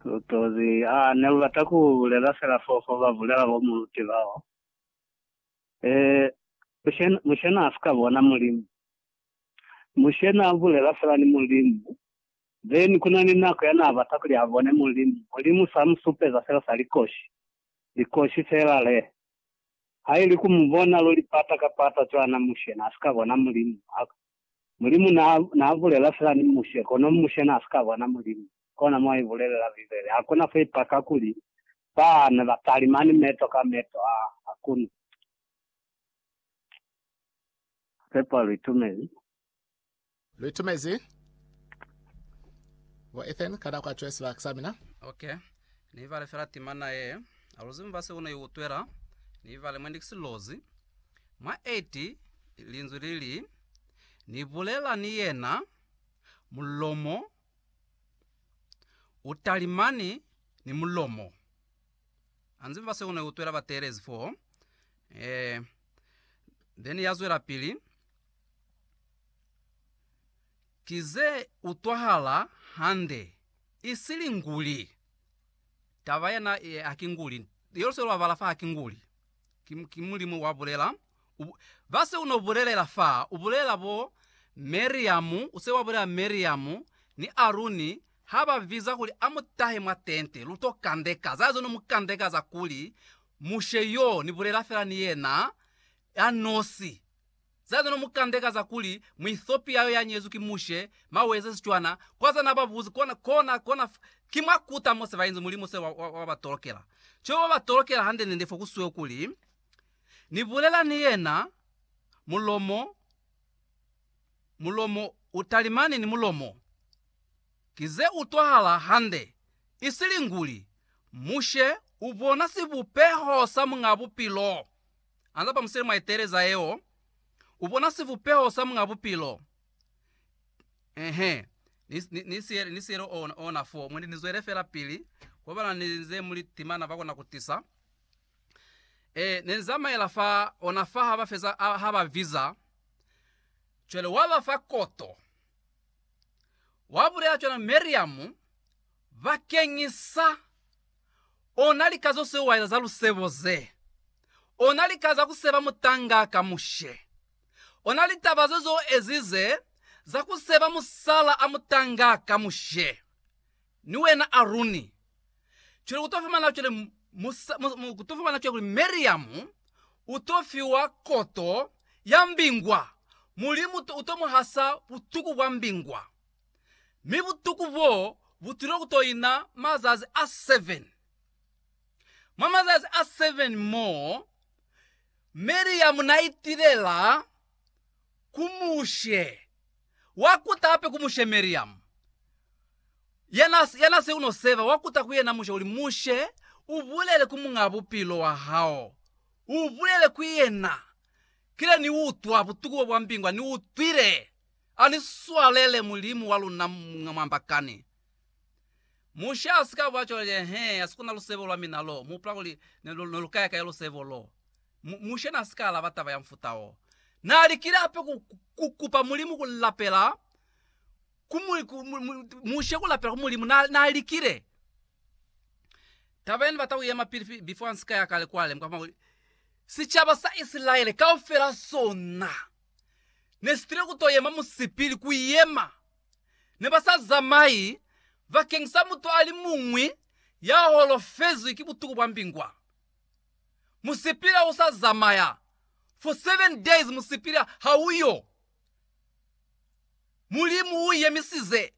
Lutozi, A ne lu bata ku bulela fela fo fo ba bulela bo mu luti bao? Ee, Mushe n'a si ka bona Mulimu. Mushe n'a bulela fela ni Mulimu, then ku na ni nako ya n'a bata kuli a bone Mulimu. Mulimu s'a mu supeza fela sa likoshi, likoshi fela le. Ha ili ku mu bona luli pata ka pata cwana, Mushe n'a si ka bona Mulimu. Mulimu naa, naa bulela fela ni Mushe, kono Mushe naa si ka bona Mulimu. Kona mo i bulelela Bibele. Ha ku na fo i paka kuli ba ne ba talimani meto ka meto. Ha, ha ku na. Ki sepa lu itumezi. Lu itumezi, bo Ethan, ka nako ya cwale sibaka sa mina. Ok. Ni ibale fela timana yee. Ha lu zibi mba seo ne i utwela. Ni ibale mwendi ki silozi. Mwa 8, linzwi li li, Ni bulela ni yena, mulomo u talimani ni mulomo. Anzi fa seo ne u twela bateelezi fo, eh, then ya zwelapili, Ki ze utwahala hande, isili nguli. Taba yena ye, ha ki nguli. Leo se lu babala fa, ha ki nguli. Ki, ki Mulimu wa bulela. U, ba se u no bulelela fa, u bulela bo Miriamu, u se wa bulela Miriamu ni Aruni ha ba biza kuli a mu tahe mwa tente, lu to kandeka. Za zo no mu kandeka za kuli, Mushe yo, ni bulela fela ni yena, ya nosi. Za zino mu kandeka za kuli mu Ethiopia yo ya nyezwi ki mushe, maweza, sicwana, kwa za na ba buzi kona, kona, kona fa, ki mwa kuta mo se ba inzi Mulimu se wa, wa, wa ba tolokela. Cwebo ba ba tolokela hande nende fo ku sweo kuli, Ni bulela ni yena, mulomo, mulomo u talimani ni mulomo. Ki ze utwahala hande, isili nguli, Mushe u bona sibupeho sa Muñ'a Bupilo. alaba musele mwa eteleza yeo, ubona sivupeho sa Muñ'a Bupilo. Ehe, ni, ni, ni siele, ni siele ona, ona fo. Mwendi nizwele fela pili, kwabana ninze muli timana bakona kutisa. E, nenzamaela fa, ona fa haba feza, haba viza. Cwale waba fa koto. Wabulela cwana Miriam, Bakeñisa ona lika zo siwaela za lusebo ze, ona lika za ku seba mutangaa ka Mushe, ona litaba ze zo ezize za ku seba musala a mutangaa ka Mushe, ni wena Aruni, cwale ku to fumana cwale musa, mu, mu, ku to fumana cwale kuli Miriamu u to fiwa koto ya mbingwa, Mulimu u to mu hasa butuku bwa mbingwa. mi butuku boo butilo kutoina mazazi a 7. Mwa mazazi a 7 moo, Miriamu naitilela ku Mushe, wakuta hape ku Mushe Miriamu, yanaseuno seva, wakuta ku yena Mushe, kuli, Mushe, ubulele ku Muñaa Bupilo wahao, ubulele ku yena, Kile niutwa butuku bobwa mbingwa, niutwile. Ani swalele Mulimu wa luna mwa mwambakani. Mushe a si ka bwa cwalo lye, He, ha si kona lusebo lwa mina lo. Mu hupula kuli ne lu, ne lu ka ya kai lusebo lo? Mu, Mushe na si ka alaba taba ya mufuta wo. Na likile hape ku, ku kupa Mulimu ku lapela ku mu, ku, mu, mu, Mushe ku lapela ku Mulimu. Na, na likile. Taba ye ni bata ku yema pili, pili, before ni si ka ya kale kwale, mukwa fumana kuli sicaba sa Isilaele kaufela sona. ne si tile ku to yema musipili ku yema. Ne ba sa zamai bakeng sa mutu a li muñwi ya holofezwi ki butuku bwa mbingwa. Musipili ha u sa zamaya for seven days, musipili ha u yo. Mulimu u yemisize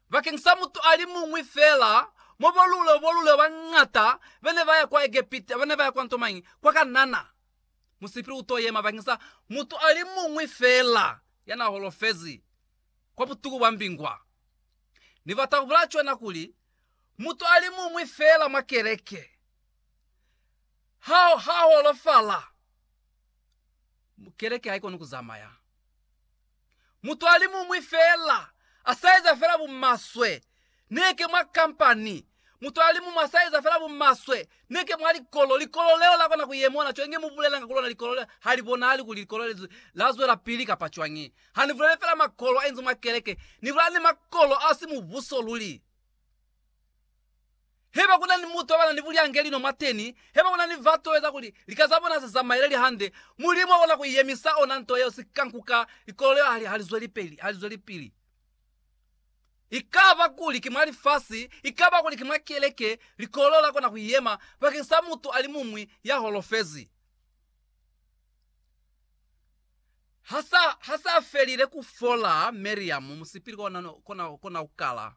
bakeng sa mutu a li muñwi fela mo bo lule bo lule ba ñata ba ne ba ya kwa Egepita, ba ne ba ya kwa ntomañi? Kwa Kanana. Musipili u t'o yema bakeng sa mutu a li muñwi feela ya n'a holofezi kwa butuku bwa mbingwa. Ni bata ku bulaya cwana kuli, mutu a li muñwi feela mwa keleke ha a holofala, keleke ha i koni ku zamaya. Mutuali muñwi fela a sa eza fela bumaswe, neke mwa kampani. Mutuali muñwi a sa eza fela bumaswe, neke mwa likolo. Likolo leo la kona ku yemona cwani nge mu bulelanga ku lona. Likolo leo ha li bonahali kuli likolo le la zwelapili kapa cwañi. Ha ni buleli fela makolo a inzi mwa keleke, ni bulela ni makolo a si Mubuso luli. Haiba kuna ni mutu abana ni bulyange lino mwateni, haiba kuna ni batu baeza kuli lika zabona se zamaele li hande, Mulimu akona ku iyemisa ona nto yeo sika nkuka likolelo ya hali halizwelipili. Ikaba kuli ki mwa lifasi, ikaba kuli ki mwa keleke, likolelo la kona ku iyema bakeng sa mutu alimuñwi ya holofezi. Hasa, hasa felile kufola, Miriam musipili kona, kona, kona kukala.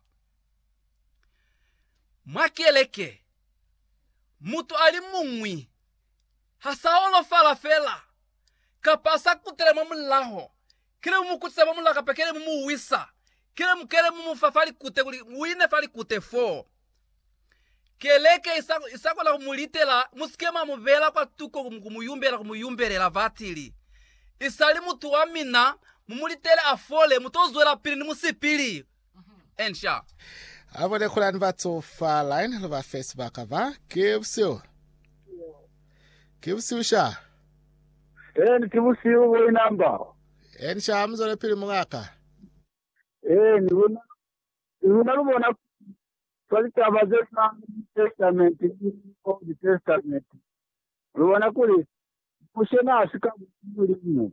Mwa keleke, mutu a li muñwi ha sa holofala fela kapa a sa kutela mwa mulaho, kile mu mu kutisa mwa mulaho kapa kile mu mu wisa, kile mu kile mu mu fa fa likute kuli u ine fa likute fo. Keleke i sa kona ku mu litela, mu si ke mwa mu beela kwa tuko ku mu yumbela, ku mu yumbelela. Vatili isali mutu wa mina mu mu litele a fole, mu to zwelapili ni musipili. and shall. Abo lekolani batso fa line lo ba fe sibaka ba ke busiu. Ke busiu sha. Eni ke busiu bo inamba. Eni sha muzole pili mungaka. Eni luna luna lubona fa litaba ze fa Testament Old Testament. Lubona kuli kushena asika mulimu.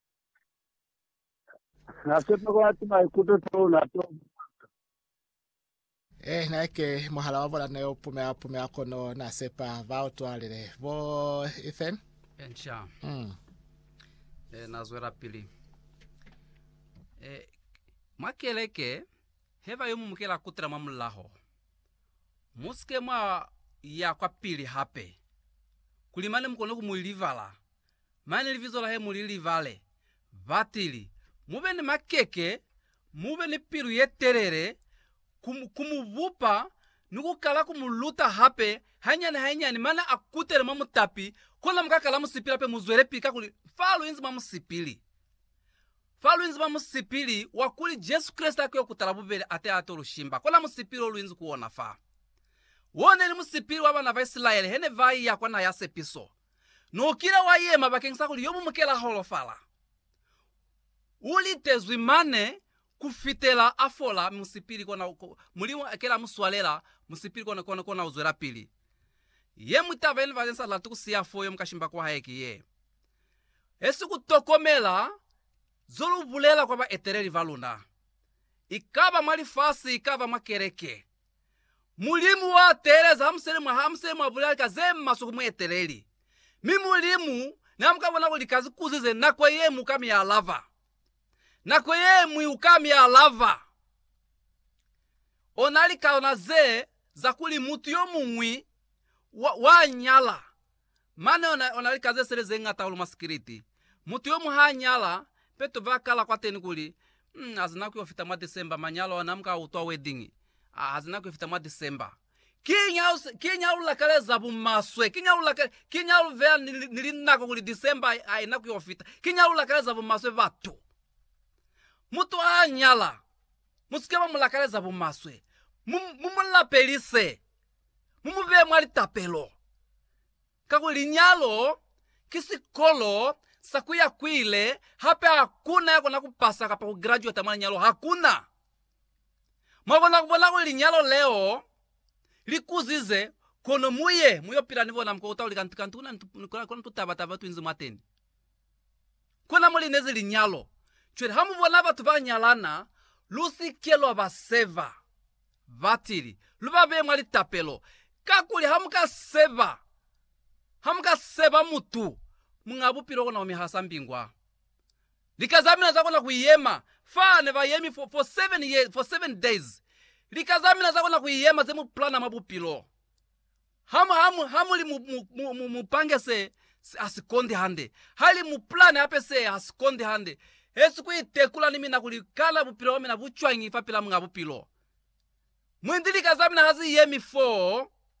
Na sepa kuli ati maikuto to na to bupaka. Eh, na ke muhala wa bona ne u pumea pumea kono na sepa ba utwalile. Bo Ethan? Encha. Mm. Eh, na zwela pili. Eh, mwa keleke, heba yo mumukela kutela mwa mulaho. Musike mwa ya kwa pili hape. Kuli mane mukone ku mu libala Mane libizo lahe mu li libale. Batili. Mube ni makeke, mube ni pilu ye telele ku, ku mu bupa ni ku kala ku mu luta hape, hanyani hanyani, mane a kutele mwa mutapi, kona muka kala musipili hape, muzwelepi kakuli fa lu inzi mwa musipili. Fa lu inzi mwa musipili wa kuli Jesu Kreste a ki yo kutala bubeli ate a to lu shimba. Kona musipili o lu inzi ku ona fa. Wo neli musipili wa bana ba Isilaele hene ba iya kwa Naha ya Sepiso. Nukile wa yema bakeng sa kuli yo mu mukela holofala. U litezwi mane kufitela a fola musipili kona Mulimu a kela mu swalela musipili kona kona kona u zwela pili. Ye mwi taba yene bane sa lati ku siya fo yo mu ka shimba kwa hae ki ye. He si ku tokomela zo lu bulela kwa baeteleli ba luna. Ikaba mwa lifasi ikaba mwa keleke. Mulimu wa teeleza hamusele mwa hamusele mwa bulali ka ze maswe ku mueteleli. Mi Mulimu n'a muka bona kuli ka zikuzi ze nako ye ñwi u ka mi alaba. Nako ye ñwi u ka mi alaba. O na likalana ze za kuli mutu yo muñwi wa, wa nyala Mane ona ona lika ze sele ze ngata hulu mwa sikiliti. Mutu yomuñwi ha nyala, peto ba kala kwateni kuli, Umm, hazi nako yo fita mwa December, manyalo ona, muka utwa wedding. Ah, hazi nako yo fita mwa December. Kiñi ha u, kiñi ha u lakaleza bumaswe? Kiñi ha u laka, kiñi ha lu beya ni, ni linako kuli December ha i nako yo fita? Kiñi ha lu lakaleza bumaswe batu? Mutu ha nyala, musike mwa mu lakaleza bumaswe. Mu, mu mu lapelise. mu mu bee mwa litapelo. Kakuli linyalo ki sikolo sa ku ya kwile, hape hakuna ya kona ku pasa kapa ku graduata mwa linyalo. Hakuna. Mwa kona ku bona kuli linyalo leo li kuzize, kono mu ye mu yo pila ni bona, mu kokota kuli kantu, kantu kuna ni tu, kuna, kuna ni tu taba taba, tu inzi mwateni. Kona muli nezi linyalo. Cwale hamu bona batu ba nyalana, lu si ke lwa ba seva. Batili, lu ba beye mwa litapelo. Kakuli ha mu ka seva, ha mu ka seva mutu, Muñ'a Bupilo kona ku mi hasa mbingwa. Lika za mina za kona ku yema, fa ne ba yemi for, for seven years, for seven days. Lika za mina za kona ku yema ze mu plana mwa Bupilo. Ha mu li mu pange se ha si kondi hande, ha li mu pulane hape se ha si kondi hande, hesi ku itekula ni mina kuli kana bupilo bwa mina bu cwañi fapil'a Muñ'a Bupilo. Mwendi lika za mina ha zi yemi foo.